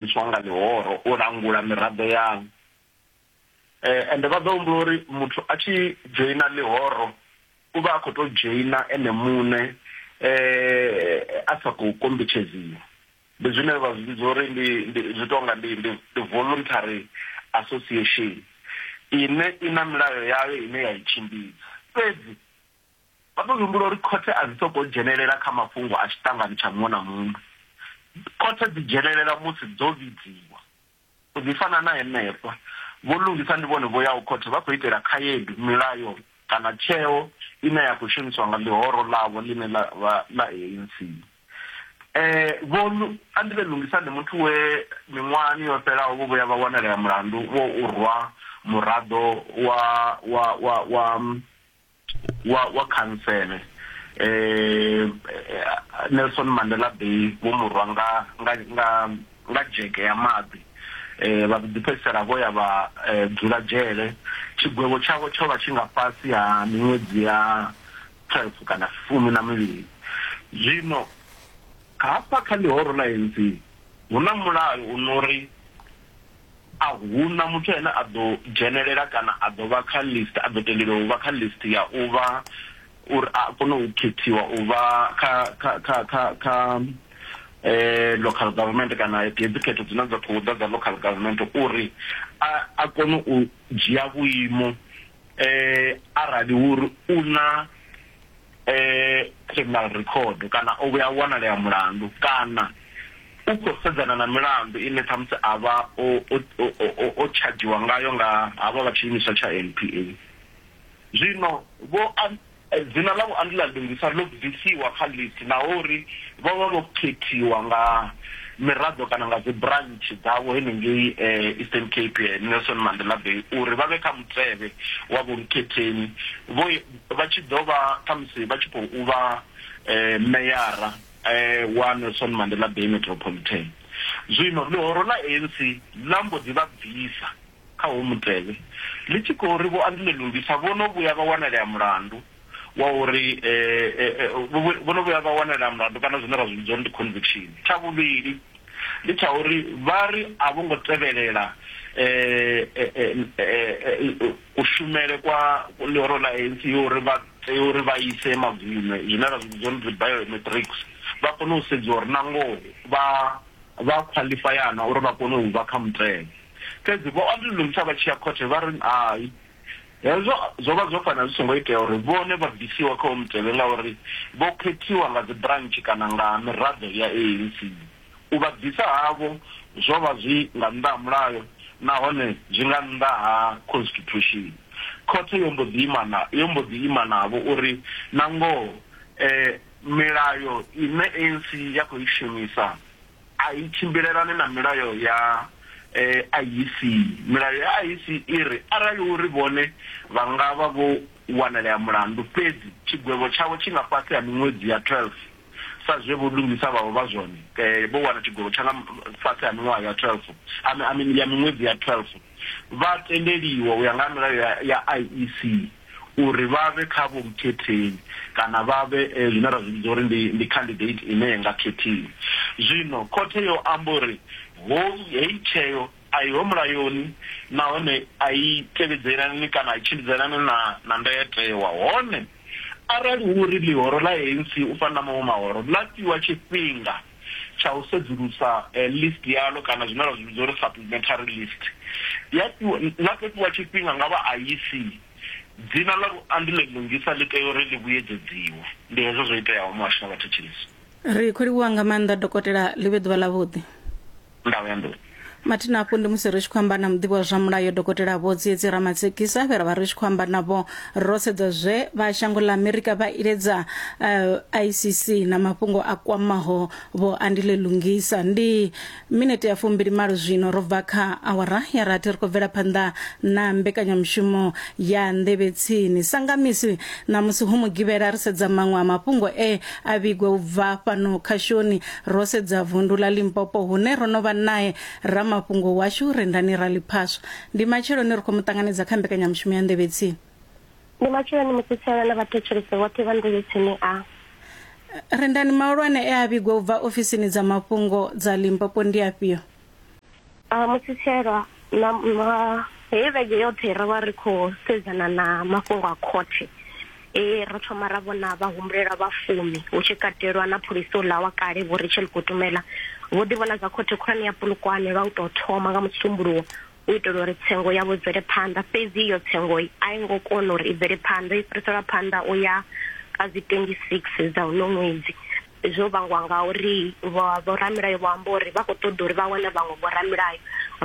tswa nga ḽihoro u langula miraḓo yaḽo eh, ende vha ḓo humbula uri muthu a tshi dzhoina ḽihoro u vha a khou tou dzhoina ene muṋe eh, a sa khou kombetshedziwa ndi zwine vha zwi vhidza uri ndi zwi tou nga ndi ndi voluntary association ine i na milayo yayo ine ya i tshimbidza fhedzi Vha ḓo humbula uri khothe a dzi sokou dzhenelela kha mafhungo a tshiṱangani tsha muṅwe na muṅwe. Khothe dzi dzhenelela musi dzo vhidziwa. U ḓi fana na henefha, vho Lungisa ndi vhone vho yaho khothe vha khou itela khaedu, milayo kana tsheo ine ya khou shumiswa nga ḽihoro ḽavho ḽine ḽa vha ḽa ANC. Vho Andile Lungisa ndi muthu we miṅwahani yo fhelaho vho vhuya vha wanalea mulandu wa u rwa muraḓo wa wa wa khantsele eh Nelson Mandela Bay vho murwa nga nga nga nga dzheke ya maḓi eh vha ḓi fhedzisela vho ya vha eh, dzula dzhele tshigwevho tshavho tsho vha tshi nga fhasi ha miṅwedzi ya 12 kana fumi na mivhili zwino hafha kha ḽihoro ḽa ANC hu na mulayo u no ri a hu na muthu ane a ḓo dzhenelela kana a ḓo vha kha list, a ḓo tendeliwa u vha kha list ya u vha uri a kone u khethiwa u vha kha kha kha kha kha local government kana hedzi khetho dzine dza khou ḓa dza local government uri a kone u dzhia vhuimo eh arali uri u na eh criminal record kana o vhuya wanalea mulandu kana u khou sedzana na milandu ine ṱhamusi a vha o tshadzhiwa ngayo nga havha vha tshiimiswa tsha NPA zwino vho Dzina ḽa Vho Andile Adongisa ḽo bvisiwa kha list naho uri vho vha vho khethiwa nga miraḓo kana nga dzi branch dzavho henengei Eastern Cape, Nelson Mandela Bay, uri vha vhe kha mutevhe wa Vho Mkhetheni vho vha tshi ḓo vha khamusi vha tshi khou vha meyara wa Nelson Mandela Bay Metropolitan. Zwino ḽihoro ḽa ANC ḽa mbo ḓi vha bvisa. Kha uhu mutevhe, ḽi tshi khou ri Vho Andile Lungisa vho no vhuya vha wanalea mulandu wa uri vho no vhuya vha wanalea mulandu kana zwine ra zwi vhidza uri ndi conviction. Tsha vhuvhili ndi tsha uri vha ri a vho ngo tevhelela kushumele kwa ḽihoro ḽa ANC ya uri vha tea uri vha ise magunwe zwine ra zwi vhidza uri dzi biometrics vha kone u sedziwa uri na ngoho vha vha khwaḽifaya na uri vha kone u vha kha mutevhe. Fhedzi vho ondululisa vha tshi ya khothe vha ri hai. Hezwo zwo vha zwo fanela zwi songo itea uri vhone vha bvisiwa kha uwo mutevhe ngauri vho khethiwa nga dzibrantshe kana nga miraḓo ya ANC. U vha bvisa havho zwo vha zwi nga nnḓa ha mulayo nahone zwi nga nnḓa ha khonsitithushini. Khothe yo mbo ḓi ima na, yo mbo ḓi ima navho uri nangoho milayo ine ANC ya khou i shumisa, A i tshimbilelani na milayo ya IEC. Milayo ya IEC i ri arali uri vhone vha nga vha vho wanalea mulandu fhedzi tshigwevho tshavho tshi nga fhasi ha miṅwedzi ya 12 sa zwe Vho Lungisa vha vha vha zwone, vho wana tshigwevho tsha nga fhasi ha miṅwaha ya 12, I mean ya miṅwedzi ya 12, vha tendeliwa u ya nga ha milayo ya IEC. uri vha vhe kha vhukhethein kana vha vhe zwine ra zwi vhidza uri ndi, ndi candidate ine ya nga khethiwa. Zwino khothe yo amba uri hoyu, heyi tsheo a i ho mulayoni nahone a i tevhedzelani kana a i tshimbidzani na, na ndayotewa. Hone arali hu uri ḽihoro ḽa ANC u fana na maṅwe mahoro ḽa fhiwa tshifhinga, tsha u sedzulusa list yaḽo kana zwine ra zwi vhidza uri supplementary list, ya fhiwa, ḽa ḓo fhiwa tshifhinga nga vha IEC, dzina ḽa luambi ḽe lungisa ḽi tea uri ḽi vhuyedzedziwe. Ndi hezwo zwo iteaho, Muhasho na Vhathetshelesi. Ri khou livhuwa nga maanḓa Dokotela, ḽi vhe ḓuvha ḽavhuḓi. ndawo ya nḓuni mathina hafhu ndi musi ri tshi khou amba na muḓivhi wa zwa mulayo dokotela vho tsiedzi ramatsekisa vhe ra vha ri tshi khou amba navho ro sedza zwe vha shango ḽa amerika vha iledza uh, icc na mafhungo a kwamaho vho andile lungisa ndi minete ya fumbili malo zwino ro bva kha awara ya rathi ri khou bvela phanḓa na mbekanyamushumo ya nḓevhetsini sangamisi na musi hu mugivhela ri sedza maṅwe a mafhungo e a vhigwa u bva fhano khashoni Ro sedza vundu ḽa Limpopo hune ro no vha nae ramafhungo washu Rendani Raliphaswa. Ndi matsheloni ri khou mu ṱanganedza kha mbekanyamushumo ya Nḓevhe Tsini. Ndi matsheloni musi Tshaina na vhathetshelesi vhoṱhe vha Nḓevhe Tsini a. Rendani, mahulwane e a vhigwa u bva ofisini dza mafhungo dza Limpopo ndi afhio? Ah, Musitshela, na na- heyi vhege yoṱhe ro vha ri khou sedzana na mafhungo a khothe e ro thoma ra vhona vhahumbulela vha fumi hu tshi katelwa na pholisi uḽa wa kale vho rachel kutumela vho ḓi vhona zwa khothe khulwane ya pulukwane lwa u tou thoma nga musumbuluwo u itela uri tsengo yavho i bvele phanḓa fhedzi iyo tsengo a i ngo kona uri i bvele phanḓa i fhiriselwa phanḓa u ya kha dzi 26 dza uno ṅwedzi Zwo vhangwa ngauri vha vhoramilayo vho amba uri vha khou ṱoḓa uri vha wane vhaṅwe vhoramilayo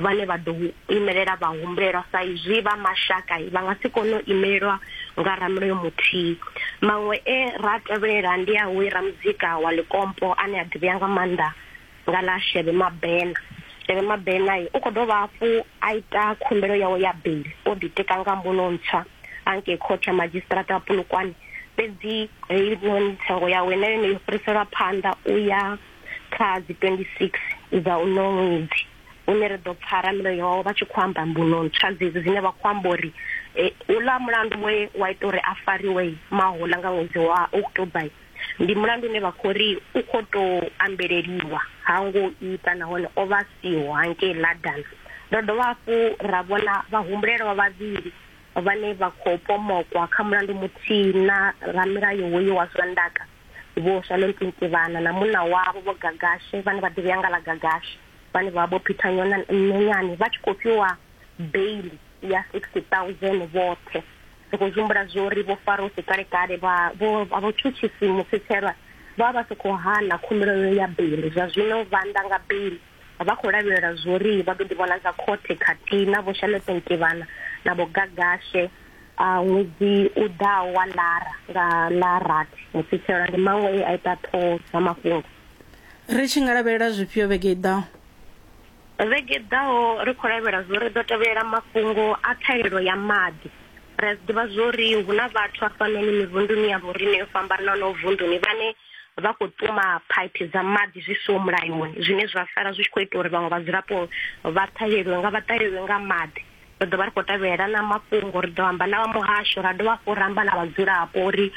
vhane vha ḓo imelela vhahumbulelwa sa izwi vha mashaka vha nga si kone u imelelwa nga ramulayo muthihi. Maṅwe e ra a tevhelela ndi a hoyu ramuzika wa ḽikompo ane a ḓivhea nga maanḓa nga ḽa Shebe Mabena. Shebe Mabena u khou dovha hafhu a ita khumbelo yawe ya beiḽi o ḓitika nga mbuno ntswa a ngei khothe ya madzhisiṱiraṱa ya Polokwane, fhedzi heinoni tsengo yawe na yone yo fhiriselwa phanḓa u ya kha dzi 26 dza uno ṅwedzi une ri ḓo pfa ramilayo wawe vha tshi khou amba mbuno ntswa dzedzi dzine vha khou amba uri uḽa mulandu we wa ita uri a fariwe mahola nga ṅwedzi wa October Ndi mulandu une vha khou ri u khou tou ambeleliwa, ha ngo ita nahone o vha a siho hangei London. Ro dovha hafhu ra vhona vhahumbulelwa vhavhili vhane vha khou pomokwa kha mulandu muthihi na ramilayo hoyu wa zwa ndaka, Vho Shalom Tintivana na munna wavho Vho Gagashe vhane vha ḓivhea nga ḽa Gagashe, vhane vha vha Vho Peter Nyenyane, vha tshi khou fhiwa beiḽi ya R60,000 vhoṱhe. Ri khou humbula zwori vho Farose kale-kale vha vho vha vhutshutshisi mufithelwa vha vha vha sa khou hana khumbelo yo ya beli. Zwa zwino vha nda nga beli vha khou lavhelela zwori vha ḓo ḓivhonadza khothe khathihi na vho Shalete Ntivhana na vho Gagashe ṅwedzi u ḓaho wa Lara nga ḽa rathi. Mufithelwa ndi maṅwe e a ita ṱhoho dza mafhungo. Ri tshi nga lavhelela zwifhio vhege i ḓaho? Vhege i ḓaho ri khou lavhela zwo ri ḓo tevhelela mafhungo a ṱhahelelo ya maḓi. Ri a zwi ḓivha zwo ri hu na vhathu hafhanoni mivhunduni ya vhorine yo fhambananaho vunduni vhane vha khou ṱuma phaiphi dza maḓi zwi siho mulayoni zwine zwa sala zwi tshi khou ita uri vhaṅwe vhadzulapo vha ṱhaheleliwe nga vha ṱaheleliwe nga maḓi. Ri ḓo vha ri khou tevhelela na mafhungo ri ḓo amba na vha muhasho ra dovha hafhu ra amba na vhadzulapo uri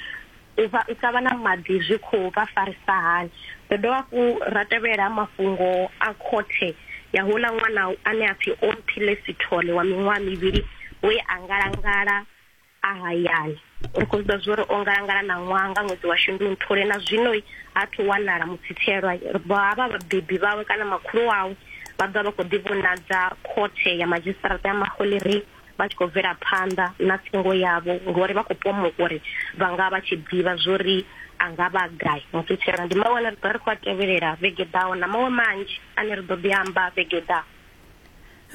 u vha u sa vha na maḓi zwi khou vha farisa hani. Ro dovha hafhu ra tevhela mafhungo a khothe ya houḽa ṅwana ane a pfi Omphile Sithole wa miṅwaha mivhili we a ngalangala a hayani. Ri khou zwiḓivha zwori o ngalangala na ṅwaha nga ṅwedzi wa Shundunthule na zwino ha thu wanala mutsithelwa. Ha vha vhabebi vhawe kana makhulu wawe vha ḓovha vha khou ḓi vhonadza khothe ya madzhisiṱaraṱa ya Mahule Ri. vha tshi khou bvela phanḓa na tsengo yavho ngori vha khou pomoka uri vha nga vha tshi ḓivha zwo ri a nga vha gai mutshutshela ndi mawe ane ri ḓo ri khou a tevhelela vhege ḓaho na maṅwe manzhi ane ri ḓo ḓi amba vhege ḓaho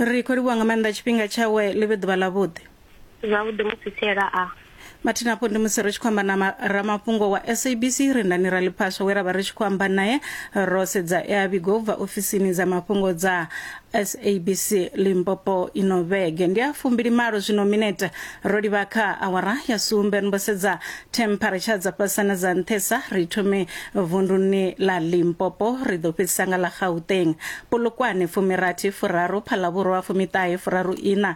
ri khou livhuwa nga maanḓa tshifhinga tshawe ḽi vhe ḓuvha ḽavhuḓi zwavhuḓi mutshutshela a mathina hafho ndi musi ri tshi khou amba na ma- ramafhungo wa sabc rendani raliphaswa we ra vha ri tshi khou amba naye ro sedza e a vhigo u bva ofisini dza mafhungo dza sabc limpopo ino vhege ndi a fumbili malo zwino minete ro livha kha awara ya sumbe ri mbo sedza temperature dza fhasana dza nṱhesa ri thome vunduni ḽa limpopo ri ḓo fhedzisa nga ḽa gauteng polokwane fumirathi furaru phalavhurwa fumiṱahe furaru ina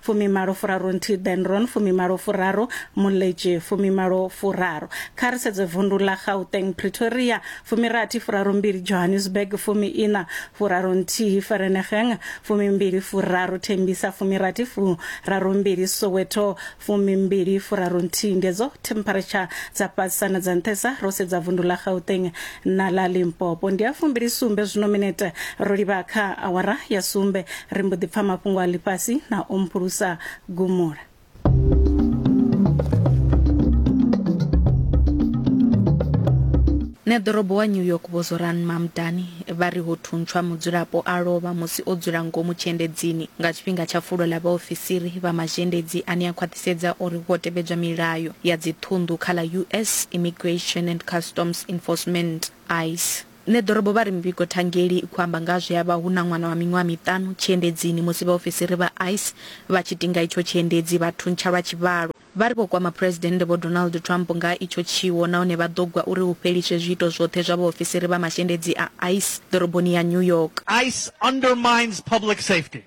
fumimalo furaru nthihi benron fumimalo furaru muletshi fumimalo furaru kha ri sedze vundu ḽa gauteng pretoria fumirathi furaru mbili johannesburg fumi ina furaru nthihi ferenegeng fumimbili furaru thembisa fumirathi furaru mbili soweto fumimbili furaru nthihi ndi edzo temperature dza fhasisa na dza nṱhesa ro sedza vundu ḽa gauteng na ḽa limpopo ndi a fumbili sumbe zwino minete ro livha kha awara ya sumbe ri mbo ḓi pfa mafhungo a ḽifhasi na o mphulusa gumula Neḓorobo wa New York Vho Zoran Mamdani vha ri ho thuntshwa mudzulapo a lovha musi o dzula ngomu tshiendedzini nga tshifhinga tsha fulo ḽa vhaofisiri vha mazhendedzi ane a khwaṱhisedza uri ho tevhedzwa milayo ya dzi ṱhunḓu kha ḽa US Immigration and Customs Enforcement, ice. Nṋe ḓorobo vha ri mivhigo thangeli i khou amba nga zwe ha vha hu na ṅwana wa miṅwaha miṱanu tshiendedzini musi vhaofisiri vha ice vha tshi tinga itsho tshiendedzi vha thuntsha lwa tshivhalo. Vha ri vho kwama Phresidennde Vho Donald Trump nga itsho tshiwo nahone vha ḓo gwa uri hu fheliswe zwiito zwoṱhe zwa vhaofisiri vha mashendedzi a ice ḓoroboni ya New York. Ice undermines public safety.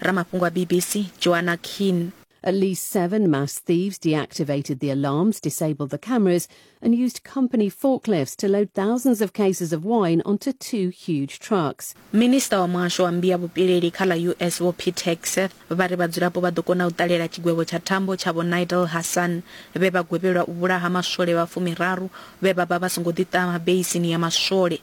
Ramafhungo a BBC, Joanna Keene. At least seven mass thieves deactivated the alarms, disabled the cameras, and used company forklifts to load thousands of cases of wine onto two huge trucks. minista wa muhasho wa mbia vhupileli kha ḽa us vho pete hegseth vha ri vhadzulapo vha ḓo kona u ṱalela tshigwevho tsha thambo tsha vho nigel hassan vhe vha gwevhelwa u vhulaha maswole vha fumiraru vhe vha vha vha songo ḓiṱama beisini ya maswole